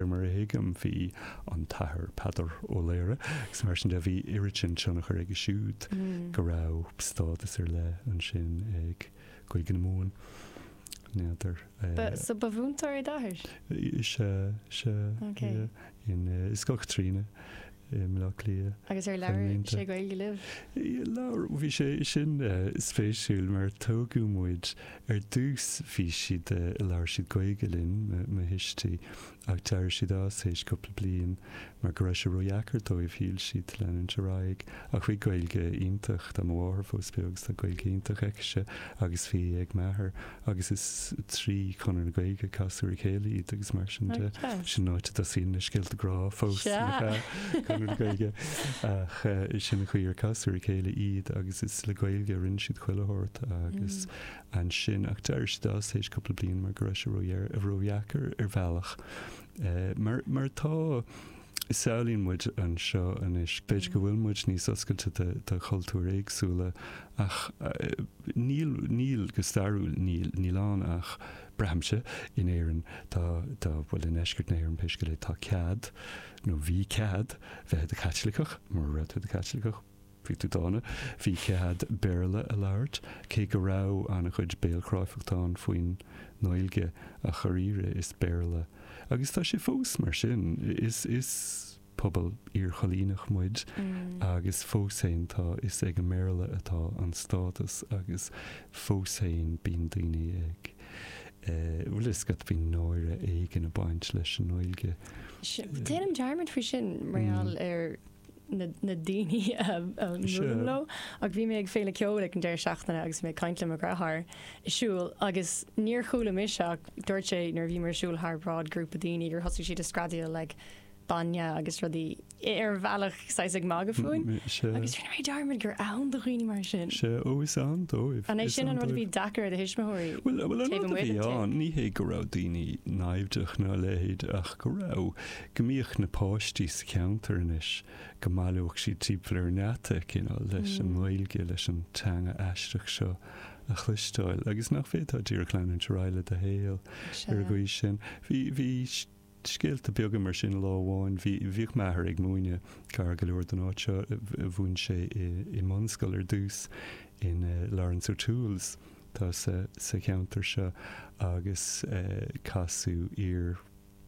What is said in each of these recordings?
mar a thuigim, bhí an tAthair Peadar Ó Laoghaire, agus mar sin de, bhí oiread sin tionchar aige siúd go raibh stádas ar leith ansin ag Gaeilge na Mumhan. N'fheadar. Ba, so ba mhúinteoir é d'athair? Sea, sea. Ok. Yeah. In, uh, i Scoil Chaitríona. i mBleá Cliath. Agus ar labhair sé Gaeilge libh? Labhair, bhí sé sin spéisiúil mar tógadh muid, ar dtús bhí siad, labhair siad Gaeilge linn, mo thuistí, ach d'éirigh siad as théis cúpla bliain mar go raibh sé ródheacair dóibh, shíl siad, leanúint ar aghaidh. Ach bhí Gaeilge iontach, tá mo mháthair fós beo agus tá Gaeilge iontach aicise agus bhí ag m'athair agus is trí Chonradh na Gaeilge a casadh ar a chéile iad agus mar sin de. Sin an áit a dtosaíonn na scéalta grá fós n'fheadar, Conradh na Gaeilge, ach sin an chaoi ar casadh ar a chéile iad agus is le Gaeilge a rinne siad chuile shórt agus ansin, ach d'éirigh siad as tar éis cúpla bliain mar go raibh sé ródheacair ar bhealach mar mar atá. Samhlaíonn muid anseo anois, b'fhéidir go bhfuil muid níos oscailte do chultúir éagsúla, ach níl, níl, go stairiúil níl. Níl ann ach, braithimse, in Éirinn, tá, tá, bhuel i ndeisceart na hÉireann pé scéal é, tá cead, nó bhí cead, bheith i do Chaitliceach, mura raibh tú i do Chaitliceach, Bhí tú dána. Bhí cead Béarla a labhairt, cé go raibh an-chuid béalchráifeachta ann faoin nGaeilge, ach dháiríre is Béarla, agus tá sé fós mar sin, is is pobal iarchoilíneach muid agus fós féin tá, is ag an mBéarla atá an stádas agus fós féin bíonn daoine ag eh, bhfuil a fhios agat, bíonn náire éigin ag baint leis an nGaeilge. Déanaim dearmad faoi sin, mar gheall ar. na daoine a mbuailim leo, ach bhí mé ag féile ceoil ag an deireadh seachtaine agus mé ag caint le mo dheartháir ag siúl agus níor chuala mise ach dúirt sé nuair a bhíomar ag siúl thar bráid grúpa daoine gur thosaigh siad ag screadaíl like bainne agus rudaí ar bhealach saghas ag magadh fúinn agus rinne mé dearmad gur ann do dhaoine mar sin. Sea, ó is ann dóibh. An é sin an rud a bhí deacair ar do thuismitheoirí? Bhuel, an rud a bhí ann, ní hé go raibh daoine naimhdeach ná a leithéid ach go raibh go mbíodh na páistí sa gceantar anois, go mbaileodh siad timpeall ar an ngeata, you know, leis an nGaeilge, leis an teanga aisteach seo a chloisteáil, agus nach bhféadfá díreach leanúint ar aghaidh le do shaol ar an gcaoi sin. Bhí, bhí scéalta beaga mar sin lá amháin, bhí, bhíodh m'athair ag múineadh gar go leor don áit seo, mhúin sé i, i mbunscoil ar dtús in eh Laurence O'Toole's tá sa, sa cheantar seo agus eh casadh iar,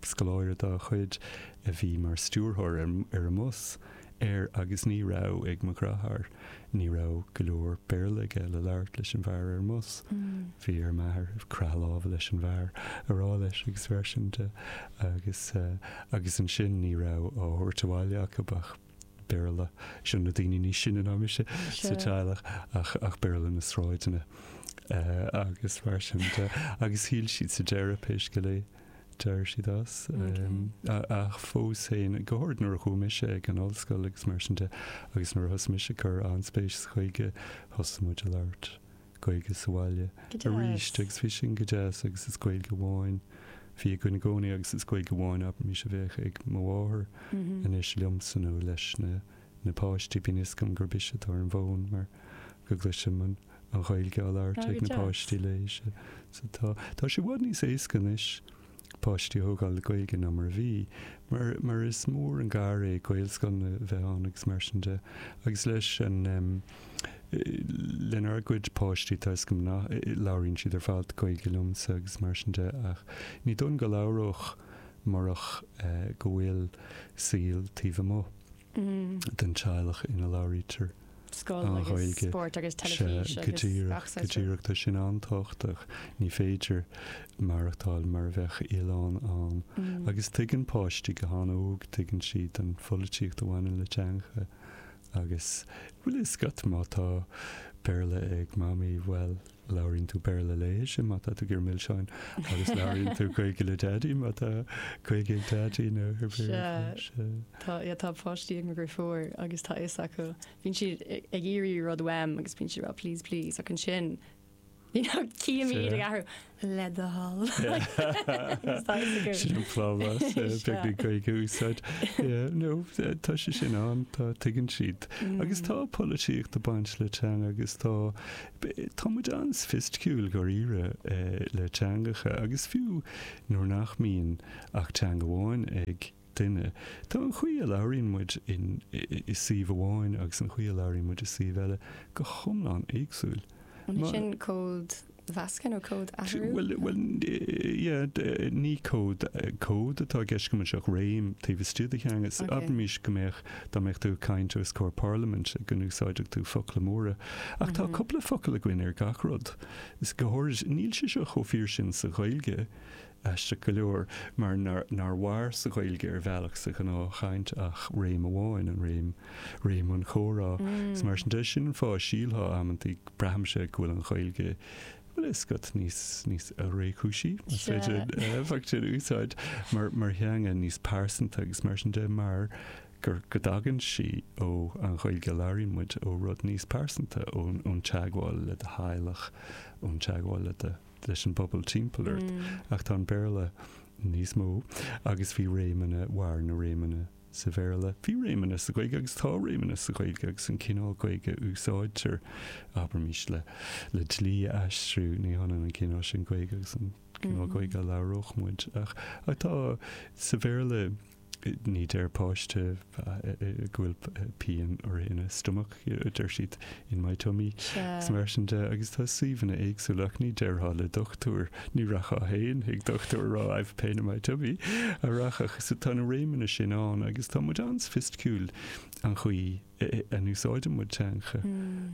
Scoláire dá chuid a bhí mar stiúrthóir ar an mbus, ar, agus ní raibh ag mo dheartháir, ní raibh go leor Béarla aige le labhairt leis an bhfear ar an mbus. Bhí ar m'athair croitheadh láimhe leis an bhfear a rá leis agus mar sin de agus, agus ansin ní raibh á thabhairt abhaile acu ach Béarla, seo na daoine níos sine ná mise sa teaghlach, ach, ach Béarla na sráideanna agus mar sin de. Agus shíl siad sa deireadh, pé scéal é, dóirt siad as. Ach fós féin, go háirid nuair a chuaigh mise ag an ollscoil agus mar sin de, agus nuair a thosaigh mise ag cur an-spéis sa Ghaeilge, thosaigh muid ag labhairt Gaeilge sa bhaile arís agus bhí sin go deas agus is Gaeilge amháin a bhí againn i gcónaí agus is Gaeilge amháin abraimis a bheadh ag mo mháthair anois liomsa nó leis na na páistí bíonn fhios agam gurb ise atá ar an bhfón mar go gcloisim an Ghaeilge á labhairt ag na páistí léi. Sea, tá. Tá sé i bhfad níos éasca anois páistí a thógáil le Gaeilge ná mar a bhí, mar, mar is mór an gar é Gaelscoileanna a bheith ann agus mar sin de. Agus leis an em. lenár gcuid páistí tá fhios agam nach, labhraíonn siad ar fad Gaeilge liomsa agus mar sin de ach ní dóigh liom go labhródh murach eh go bhfuil saol taobh amuigh. den teaghlach ina labhraítear an Ghaeilge. Sea, go díreach, go díreach. Tá sin an-tábhachtach. Ní féidir maireachtáil mar a bheadh oileán ann. Agus tuigeann páistí go han-óg, tuigeann siad an pholaitíocht a bhaineann le teangacha. Agus bhfuil a fhios agat, má tá Béarla ag Mamaí, bhuel, Labhraíonn tú Béarla léise má tá tú ag iarraidh milseáin agus labhraíonn tú Gaeilge le Daidí má tá Gaeilge ag Daidí nó gur Béarla. Tá, yeah, tá páistí agam gur fuar agus tá a fhios acu. Bíonn siad ag iarraidh rud uaim agus bíonn siad ag rá please, please ach ansin you know cífidh mé iad ag athrú le do thoil. Sin an plámás, beidh an Ghaeilge á úsáid. Yeah, no, tá sé sin ann, tá, tuigeann siad. Agus tá polaitíocht ag baint le teanga agus tá Tá muid an-soifisticiúil dháiríre le teangacha agus fiú nuair nach mbíonn ach teanga amháin ag duine, tá an chaoi a labhraíonn muid i suíomh amháin agus an chaoi a labhraíonn muid i suíomh eile go hiomlán éagsúil. An é sin códmheascadh nó códathrú? Bhuel, ní cód atá i gceist agam anseo ach réim taobh istigh de theanga. Abraimis go mbeadh Dá mbeadh tú ag caint os comhair parlaimint go n-úsáidfeadh tú focla móra. Ach tá cúpla focal againn ar gach rud. Is go háirid níl sé seo chomh fíor sin sa Ghaeilge, aisteach go leor, mar nár mhair sa Ghaeilge ar bhealach sa ghnáthchaint ach réim amháin, an réim, réim an chomhrá. Is mar sin de, sin an fáth a sílfeá amanntaí, braithimse, go bhfuil an Ghaeilge, bhuel, is code níos, níos réchúisí, más féidir an éifeacht sin a úsáid, mar, mar theanga níos pearsanta agus mar sin de, mar gur, go dtagann sí ó, an Ghaeilge a labhraíonn muid, ó rud níos pearsanta, ón, ón teagmháil le do theaghlach, ón teagmháil le do, leis an bpobal timpeall ort. Ach tá an Béarla níos mó agus bhí réimeanna, mar na réimeanna sa Bhéarla. Bhí réimeanna sa Ghaeilge agus tá réimeanna sa Ghaeilge agus an cineál Gaeilge a úsáidtear, abraimis, le le dlí a aistriú, ní hionann an cineál sin Gaeilge agus an cineál Gaeilge a labhródh muid. Ach ach tá, sa Bhéarla, ní deir páiste go bhfuil pian air ina stomach. deir siad, in my tummy. Is mar sin de, agus tá suíomhanna éagsúla, ach ní déarfá le dochtúir, ní rachfá féin chuig dochtúir a rá I've pain in my tummy, an rachfá? So tá na réimeanna sin ann agus tá muid an-soifisticiúil an chaoi a n-úsáideann muid teanga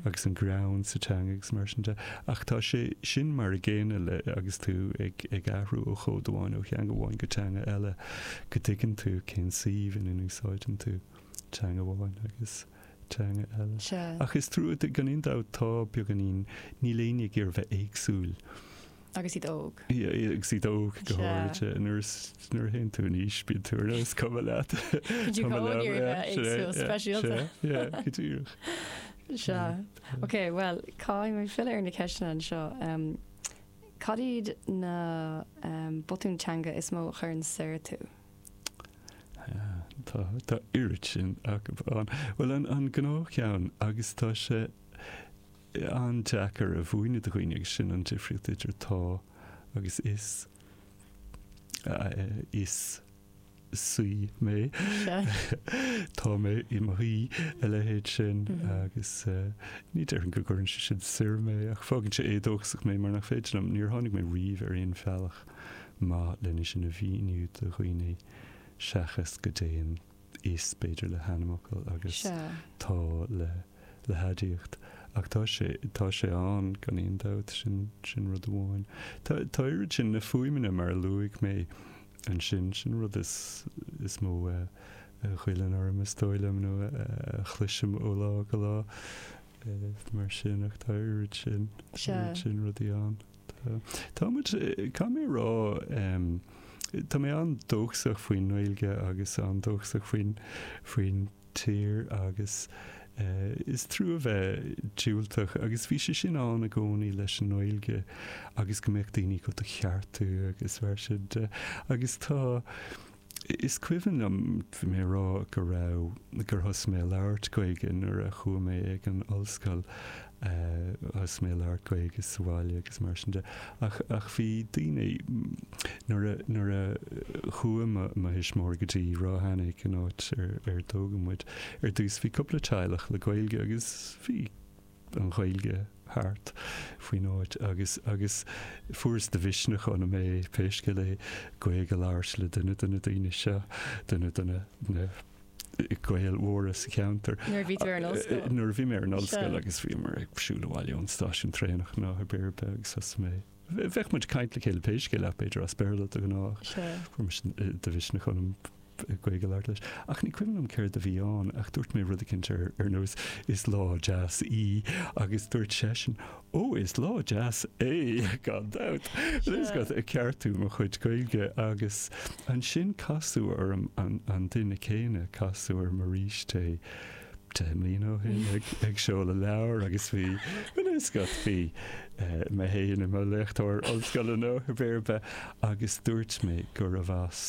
agus an greann sa teanga agus mar sin de, ach tá sé sin mar a gcéanna le agus tú ag ag athrú ó chód amháin, ó theanga amháin go teanga eile, go dtuigeann tú cén suíomh ina n-úsáideann tú teanga amháin agus. teanga eile. Ach is fíor duit, gan aon dabht, tá beagáinín, níl éinne ag iarraidh bheith éagsúil. Agus iad óg. agus iad óg go háirithe. Nuair, nuair a théann tú in aois, bíonn tú ar nós, is cuma leat. Bíonn tú chomh éagsúil, speisialta. Sea, go díreach. Sea. Ok, bhuel, caithfidh mé filleadh ar na ceisteanna anseo. Cad iad na botúin teanga is mó a chuireann soir tú? Tá, tá oiread sin acu ann. Bhuel, an, an gnáthcheann, agus tá sé an-deacair a mhúineadh do dhaoine, agus sin an difríocht idir tá agus is, is suí mé, tá mé i mo shuí, a leithéid sin, agus ní déarfainn go gcuireann sé sin soir mé, ach fágann sé éadóchasach mé, mar nach féidir liom, níor tháinig mé riamh ar aon bhealach. maith lena sin a mhíniú do dhaoine seachas go dtéann is, b'fhéidir, le hainmfhocal agus tá le le haidiacht. Ach tá sé tá sé ann gan aon dabht, sin sin rud amháin. Tá tá oiread sin na fuaimeanna mar a luaigh mé ansin, sin rud is is mó a ghoilleann orm is dóigh liom nó a chloisim ó lá go lá mar sin ach tá oiread sin sin rudaí ann. Tá. Tá muid, caithfidh mé a rá, tá mé an-dóchasach faoin nGaeilge agus an-dóchasach faoin, faoin tír agus is trua bheith diúltach agus bhí sé sin ann i gcónaí leis an nGaeilge agus go mbeadh daoine ag do cheartú agus mar sin de agus tá. Is cuimhin liom é a rá go raibh, gur thosaigh mé a labhairt Gaeilge nuair a chuaigh mé ag an ollscoil, thosaigh mé a labhairt Gaeilge sa bhaile agus mar sin de. Ach, ach bhí daoine, nuair a, nuair a chuaigh mo, mo thuismitheoirí go dtí Ráth Eanaigh, an áit ar, ar tógadh muid, ar dtús bhí cúpla teaghlach le Gaeilge agus bhí, an Ghaeilge thart faoin áit agus agus fuaireas de mhisneach ionam é, pé scéal é, Gaeilge a labhairt le duine de na daoine seo, duine de na na Gaeil mhóra sa cheantar. Nuair a bhí tú ar an ollscoil? Nuair a bhí mé ar an ollscoil agus bhíomar ag siúl abhaile ón stáisiún traenach nó pé ar bith agus thosaigh mé Bheadh muid ag caint le chéile pé scéal ach b'fhéidir as Béarla de ghnáth. Fuair mé de mhisneach ionam Gaeilge a labhairt leis. Ach ní cuimhin liom céard a bhí ann ach dúirt mé rud eicínt ar nós Is lá deas í agus dúirt seisean Ó, is lá deas é, gan dabht! Agus ag ceartú mo chuid Gaeilge agus ansin casadh orm an duine céanna, casadh orm arís é. 10 mbliana ó shin ag seoladh leabhar agus bhí an fhuascailt, bhí mé féin i mo léachtóir ollscoile nó pé ar bith, agus dúirt mé gurbh as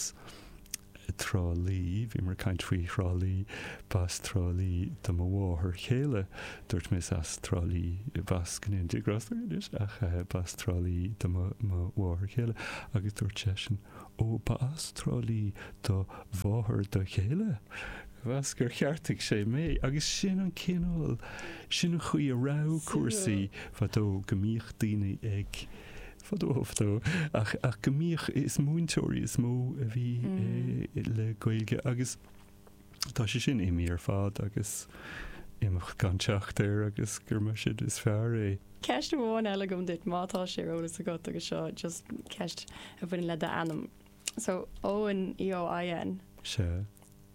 Trá Lí, bhíomar ag caint faoi Thrá Lí, b'as Trá Lí do mo mháthair chéile, dúirt mé is as Trá Lí, b'as go ndéana Dia grásta uirthi, ach b'as Trá Lí do mo mháthair chéile, agus dúirt seisean, ó b'as Trá Lí do mháthair do chéile? Agus gur cheartaigh sé mé agus sin an cineál, sin an chaoi a raibh cúrsaí fadó, go mbíodh daoine ag, fadó fadó, ach, ach go mbíodh, is múinteoirí is mó a bhí le Gaeilge agus tá sé sin imithe ar fad agus imeacht gan teacht air agus gur mar sin is fearr é. Ceist amháin eile agam duit má tá sé ar eolas agat agus seo just ceist a bhaineann le d'ainm. So Eoin EOIN. Sea.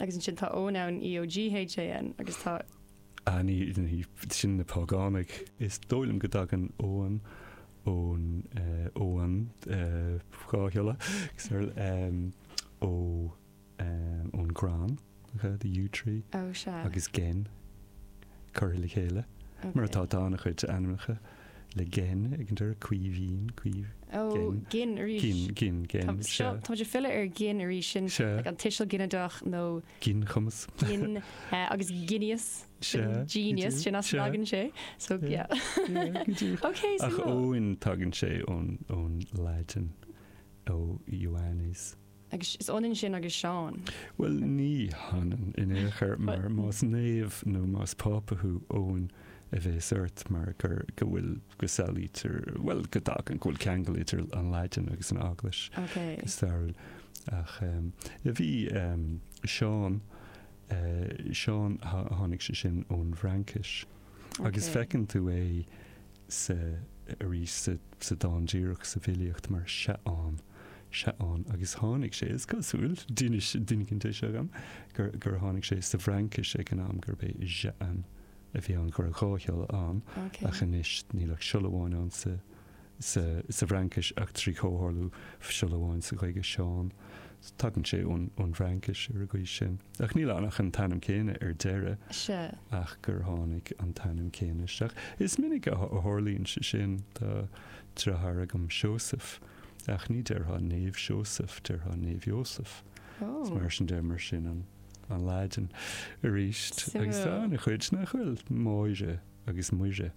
Agus ansin tá Eoghan ann EOGHAN agus tá. Á, sin na págánaigh. Is dóigh liom go dtagann Eoghan ón Eoghan dhá shiolla, ón gcrann. Gaeilge the Yew Tree agus gin curtha le chéile mar atá, tá an-chuid ainmneacha le gin ag an deireadh, Caoimhín, Caoimh. Ó, Gin arís. Gin, Gin, Gin. Tá muid ag filleadh ar Gin arís, sin an tuiseal ginideach nó. Ginchumas. Gin agus ginias, genius, sin as a dtagann sé, so yeah. Ok, so. Ach Eoin, tagann sé ón Laidin, ó Ioannes. Agus is ionann sin agus Seán. Bhuel, ní hionann in aon chor, mar más naomh nó más Pápa thú, Eoin a bhéas ort, mar gur, go bhfuil, go samhlaítear, bhuel, go dtagann, go bhfuil ceangal idir an Laidin agus an Eaglais, go stairiúil. Ach ehm, bhí ehm, Seán, eh, Seán, tháinig sé sin ón bhFraincis. Agus feiceann tú é sa, arís, sa, sa dán díreach sa bhfilíocht mar Seaán, Seaán, agus tháinig sé, is cosúil, d'inis, d'inis an té seo dhom, gur, gur tháinig sé sa bhFraincis ag an am gurb é Jehan a bhí ann, go raibh dhá shiolla ann, ach anois níl ach siolla amháin ann sa, sa bhFraincis ach trí chomhtharlú siolla amháin sa Ghaeilge, Seán. Tagann sé ón bhFraincis ar an gcaoi sin. Ach níl ann ach an t-ainm céanna ar deireadh. Sea. ach gur tháinig an t-ainm céanna isteach. Is minic a tharlaíonn sé sin. Tá deartháir agam, Seosamh, ach ní déarfá Naomh Seosamh, déarfá Naomh Iósaf. Is mar sin de, mar sin an Laidin. Arís, agus tá Suimiúil. ana-chuid nach bhfuil? Máire agus Muire.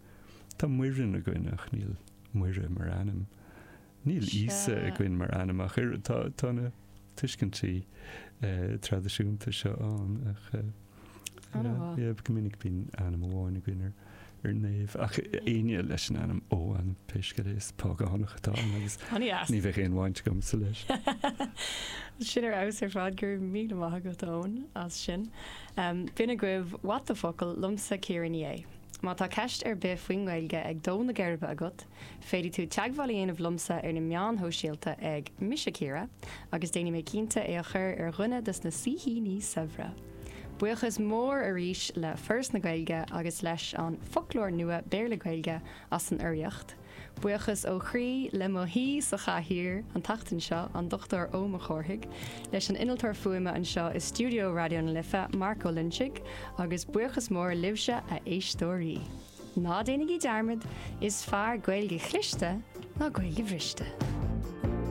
Tá Muireann againn ach níl Muire mar ainm. Níl Íosa againn mar ainm ach oiread. Tá, tá na tuiscintí traidisiúnta seo ann ach, yeah, go minic bíonn ainm amháin againn ar, ar naomh. Ach éinne leis an ainm Eoghan, pé scéal é, is págánach atá ann agus ní bheadh aon bhaint agamsa leis. Sin ar fheabhas ar fad. Go raibh míle maith agat, Eoin, as sin. B'in agaibh What the Focal, liomsa Ciara Ní É. Má tá ceist ar bith faoin nGaeilge ag dó na geirbe agat, féadfaidh tú teagmháil a dhéanamh liomsa ar na meáin shóisialta ag, Mise Ciara, agus déanfaidh mé cinnte é a chur ar dhuine dos na saoithíní saibhre! Buíochas mór arís le Foras na Gaeilge agus leis an Foclóir Nua Béarla-Gaeilge as an urraíocht. Buíochas ó chroí le mo shaoi sa chathaoir an tseachtain seo, an Dr Eoin Mac Cárthaigh, leis an innealtóir fuaime anseo i stiúideo Raidió na Life, Mark Ó Loinsigh, agus buíochas mór libhse, a éisteoirí. Ná déanaigí dearmad, is fearr Gaeilge chliste ná Gaeilge bhriste!